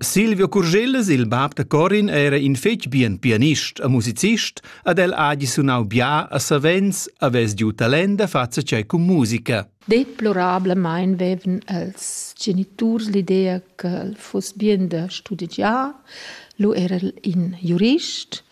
Silvio Curgellas, il bab da Corin, era in fetg bien pianist e musicist ed el ha gi sunau bia a savens havess giu talent da far tschei cun musica. Deplorablemein vevan els geniturs l'idea che el fuss bien da studigiar. Lu era el in jurist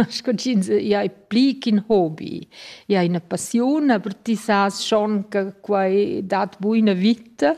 sco ch'ins ia è pli ch'in hobby. Ia è ina passiun, aber ti sas schon che quai dat buina vita.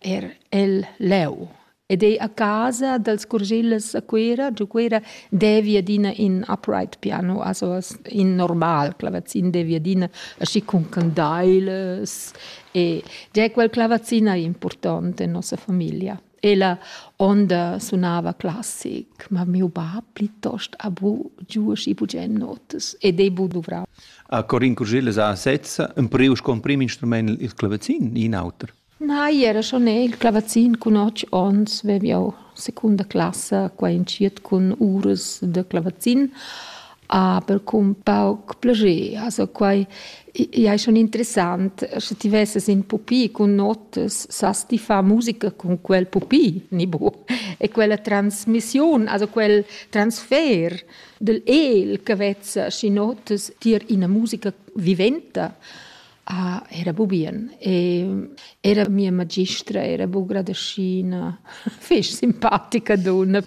er el leu ed ei a casa dels Curgilles a Cuera, giu Cuera devi adina in upright piano, also in normal clavazin devi adina aschi cun candailas e già quel clavazin ei important en nossa famiglia. Ella onda sunava classic, ma miu bab plitost ha bu giu aschi bugen notas ed ei bu duvrau. A Corin Curgilles ha sezza empriu sco emprim instrument il clavazin, in auter. Nei, era schon el clavazin cun otg onns vev jau secunda classa qua entschiet cun uras da clavazin, aber cun pauc plascher. Also quai ei schon interessant, sche ti vesses in pupi cun notas, sas ti far musica cun quel pupi, ni bu? E quella transmissiun, also quel transfer dal el che vezza schi notas tier ina musica viventa, Ah, era bu bien. E era mia magistra era bu gradaschina, fich simpatica dunna.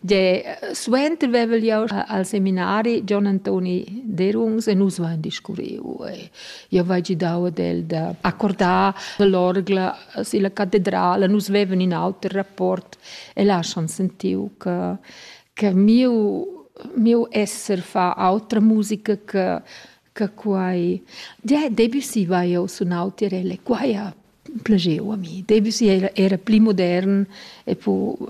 Gie, suenter vevel jau al seminari Gian Antoni Derungs e nus vain discurriu. E io vai gidau ad el da accordar l'orgla silla catedrala. Nus vevan in auter rapport e lascian sentiu che che miu miu esser fa autra musica che che quai Debussy va jau sunau tirelle quai ha plageu a mi Debussy era, era pli modern e po uh,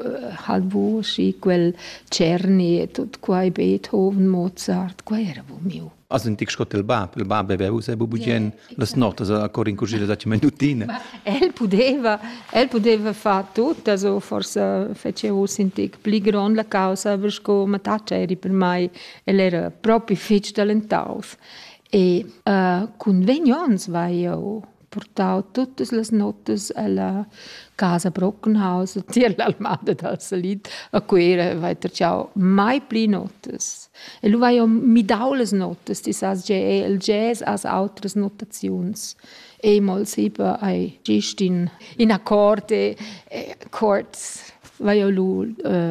halbo și quel Cerni e tot quai Beethoven Mozart quai era bo miu As un tic scot il bab, il bab aveva usa bugen las notas a cor in cucina da minutina. El pudeva, el pudeva far tut, also forse fece us in tic pli grond la causa, aber sco mataccia eri per mai El era propi fetg talentaus e uh, cun vegn onns vai eu portau tuttas las notas alla casa Brockenhaus tier l'almada dal Salit a Cuera vai tracciau mai pli notas. E lu vai eu midau las notas, ti sas ge el jazz as outras notaziuns. E-moll sipa ai gist in, in accord e, e chords vai eu lu uh,